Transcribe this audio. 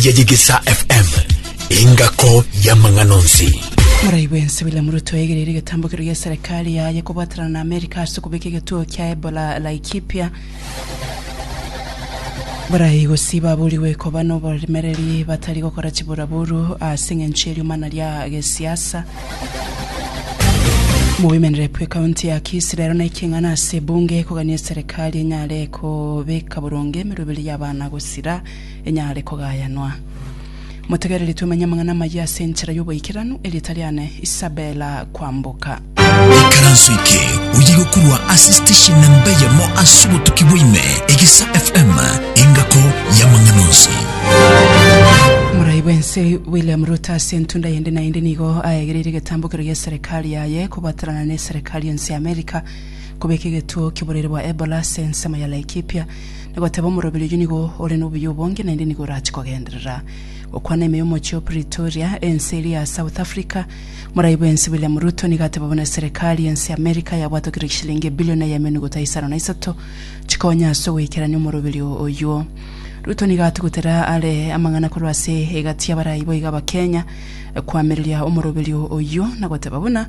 ya Yegesa FM, engako y'amang'ana onsi. Morai bwensi William Ruto aegereire egetambokero gia serikali yaye kobwaterana na Amerika ase okobeka egetuo kia Ebola Laikipia. Barai gosii baburigwe koba n'oboremereri batari gokora chiburaburu ase eng'encho y'eriomana ria gesiasa. Mowomen Rep ekaunti ya Kisii rero na ekeng'ana ase ebunge kogania serikali enyare kobeka boronge emeroberi y'abana gosira enyare kogayanwa. Motegereri twemenye amang'ana amayia ase enchera y'oboikeranu, erieta riane Isabella Kwamboka. Ikaranso eke oye igokorwa ase station namba eyemo ase obotuki bwaime, Egesa FM, engako y'amang'ana onsi. Morai bw'ense William Ruto ase entunda yende na yende nigo aegereire egetambokero gia eserekari yaye kobwatanana na eserekari ense ya America kobeka egetuo ki'oborwaire bwa Ebola ase ensemo ya Laikipia na goteba, Omoroberi oyio nigo ore nobuya obonge, naende nigo orache kogenderera. Gokwana ime y'omochie o Pretoria, ense eria ya South Africa, Morai bw'ense William Ruto nigo ateba buna Serikali y'ense ya America yabwatwa kera chishilingi ebilion eye eme nuguta isano na isato chikonya ase ogoikerania omoroberi oyio. Ruto nigo atugutera are amang'ana korwa ase egati y'abarai boigo Abakenya koamereria omoroberi oyio na goteba buna